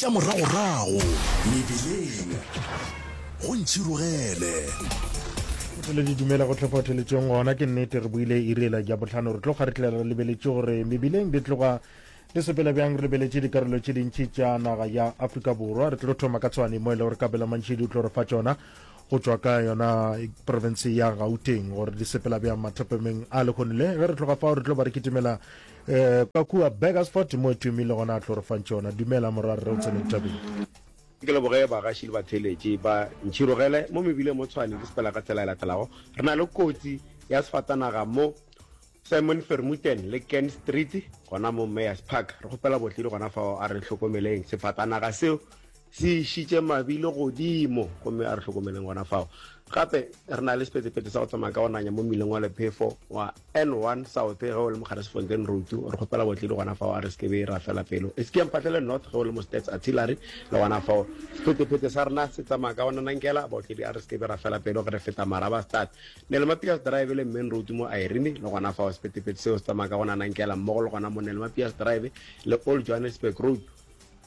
Tša moragorago mebileng go ntšhirogele. O tlile di dumela go tlhopha theletšong gona ke nnete re buile irela ja botlhano re tlo ga re tlela re lebeletše gore mebileng di tloga di sepela bjang re lebeletše dikarolo tše dintši tša naga ya afrika borwa re tlo thoma ka tshwane mo e le gore kabelo mantšhedi o tlo re fa tšona go tšwa ka yona province ya gauteng gore di sepela bjang mathopemeng a lekgonile ge re tloga fao re tlo ba re kitimela Eh, ka kua Burgersport mo Twimi le gona a tlorofantše yona. Dumela morwa rre o tsene ditabeng. Ke leboge bagaši le batheeletši ba Ntšhirogele mo mebileng mo Tshwane ke sepela ka tsela e latelago. Re na le kotsi ya sefatanaga mo Simon Vermuten le Ken Street gona mo Mayors Park. Re kgopela botledi gona fao a re hlokomeleng sefatanaga seo Se išitše mabilo godimo, gomme a re hlokomeleng gona fao. Gape re na le sepetepeete sa go tsamaya ka go nanya mo mmileng wa lephefo wa N1 South ge o le mo Garesfontein Road. Re kgopela botledi gona fao, a re se ke be ra fela pelo. Eseke ya mphatlele North ge o le mo Stats Artillery le gona fao. Sepetepeete sa rena se tsamaya ka go nanankela. Botledi a re se ke be ra fela pelo ge re feta Marabastad, Nelma Pius Drive le Main Road mo Irene. Le gona fao sepetepeete seo se tsamaya ka go nanankela mmogo le gona mo Nelma Pius Drive le Old Johannesburg Road.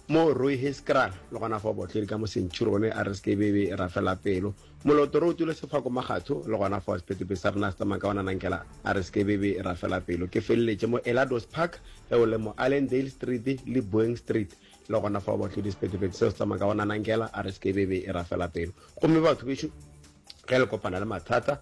Mo Rooi Heeskraal le gona fao Botlheri ka mo Century go ne a re seke be be ra fela pelo. Moloto re o tule sefako Magatho le gona fao Sepetepe sa rena se tsamaya ka ona Nankela a re seke be be ra fela pelo. Ke feleletše mo Elados Park ge o le mo Allendale Street le Boeing Street le gona fao Botlheri Sepetepe seo se tsamaya ka ona Nankela a re seke be be ra fela pelo. Gomme batho bešo ge le kopana le mathata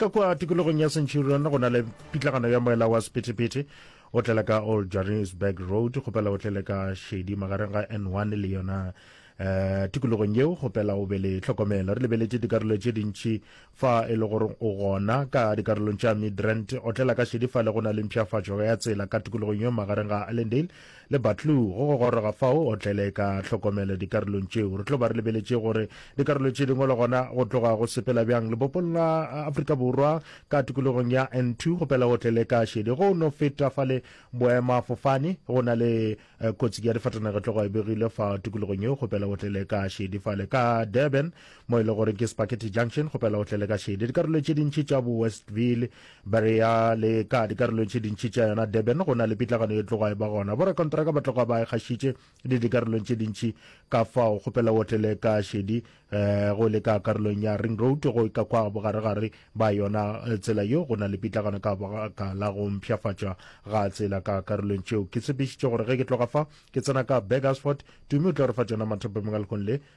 ka kwa tikologong ya centurion go na le pitlagano ya moela wa sephethephethe o tlela ka old johannesburg road kgopela o tlele ka shedi magareng ga n1 le yona um tikologong yeo kgopela o be le tlhokomelo re lebeletse dikarolo tše dintši fa e le gore o gona ka dikarolong tša midrand o tlela ka shedi fa le go na le mpšhafatšo ya tsela ka tikologong yeo magareng ga allendale Le Batlou, go go goroga fao o tlele ka hlokomelo dikarolong tšeo. Re tlo ba re lebeletše gore dikarolo tše dingwe le gona go tloga go sepela bjang lebopong la Afrika Borwa ka tikologong ya N2 go pela o tlele ka šedi. Go no feta fa le boemafofane go na le eh, kotsi ya difatanage tloga e begile fa tikologong yeo go pela o tlele ka šedi fale. Ka Durban mo e le gore ke Spakete Junction go pela o tlele ka šedi. Dikarolo tše dintši tša bo Westville Barea le ka dikarolong tše dintši tša yona Durban go na le pitlagano e tloga e ba gona. Borakontraka ba tloga ba e kgašitše le dikarolong tše dintši ka fao kgopela o tlele ka šedi eh, go le ka karolong ya Ring Road go ka kwa bogaregare ba yona eh, tsela yo go na le pitlagano ka baka la go mpšhafatšwa ga tsela ka karolong tšeo. Ke tshepišitše gore ge ke tloga fa ke tsena ka Burgersford, Tumi o tla re fa tšona mathapamengwalkong le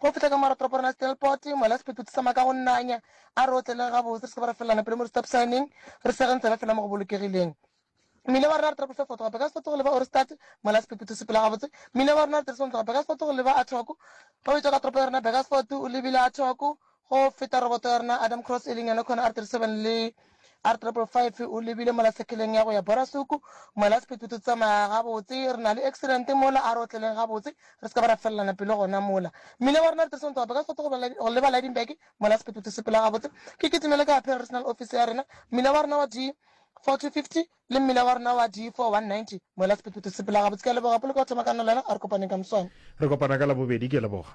Go fihla ka morago toropo ya rena ya Stelpot, mola sephetho se sama ka go nanya, a re otleleng gabotse, re se ke ba ra felelana pelo mo di-stop sign-ing, re sege ntsebe fela mo go bolokegileng. Mmila wa rena re trakolisa Fort Gope ka Sesotho go leba Ohrigstad, mola sephetho se pela gabotse. Mmila wa rena re dirisa go ntloga Burgersfort go leba Athock. Ge o etšwa ka toropo ya rena Burgersfort, o lebile Athock, go feta roboto ya rena Adamcross, e leng yona Connor R37 le. R555 o lebile mola sekheleng ya go ya Borasuku, mola sephethephethe o tsamaya gabotse, re na le accident mola, a re otleleng gabotse, re se ka ba ra felelana pelo gona mola. Mmila wa rena re dirisang toga Bekasoto go leba, go leba Lydenburg, mola sephethephethe o sepela gabotse, ke kitimele ka Appeal Regional Office ya rena, mmila wa rena wa D4250 le mmila wa rena wa D4190, mola sephethephethe o sepela gabotse. Ke a leboga, poloko ya go thoma ka nna le wena, a re kopaneng ka moswane. Re kopana ka Labobedi, ke a leboga.